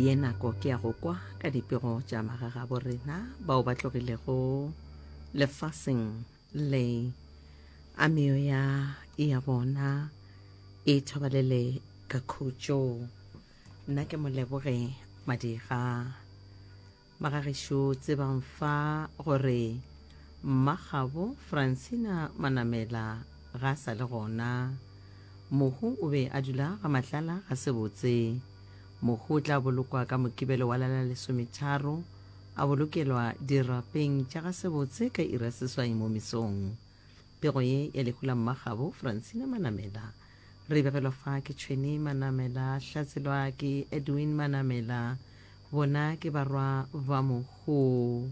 ye nako ke ya go kwa ka dipego tša magagabo rena bao ba tlogilego lefaseng le a meoya ya bona e thobalele ka khutšo nna ke moleboge madiga Magagesho tsebang fa gore mmagabo Francina Manamela ga a sa le gona. Mohu o be a dula ga Matlala ga sebotse. Mohu o tla bolokwa ka Mokibelo wa la la lesometharo, a bolokelwa dirapeng tša ga sebotse ka iri ya seswai mo mesong. Pego ye ya lehu la mmagabo Francina Manamela. Re e begelwa fa ke Tšhweni Manamela, hlatselwa ke Edwin Manamela. Bona ke barwa ba mohu.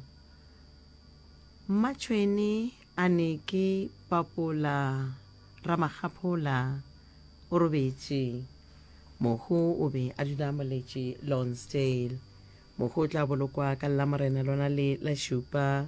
Mmatšhweni a ne ke papola Ramakgaphola o robetše. Mohu o be a dula Moletše, Lonsdale. Mohu o tla bolokwa ka Lamorena lona le la šupa.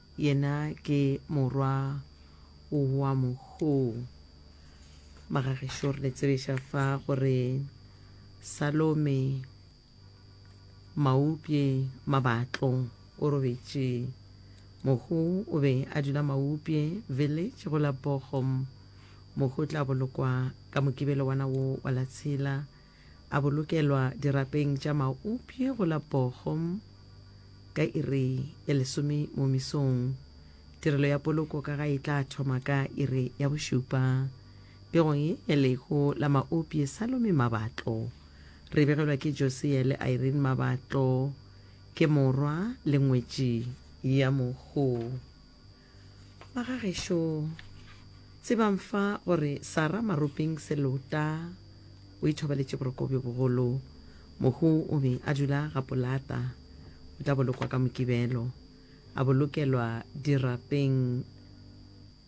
Yena ke morwa wa mohuu. Magagešu re le tsebiša fa gore Salome Maupye Mabatlo o robetše. Mohuu o be a dula Maupye Village go la Bochum. Mohuu o tla bolokwa ka Mokibelo wana wo wa la tshela. A bolokelwa dirapeng tša maupje go la Bochum ka iri ya lesome mo mesong. Tirelo ya poloko ka ga e tla thoma ka iri ya bošupa. Pegong ye ya lehu la maupje Salome Mabatlo. Re begelwa ke Josia le Irene Mabatlo. Ke morwa le ngwetši ya mohu. Ba ga gešo, tsebang fa gore Sara Maropeng Selota o ithobaletše boroko bjo bogolo. Mohu o be a dula ga polata, o tla bolokwa ka Mokibelo, a bolokelwa dirapeng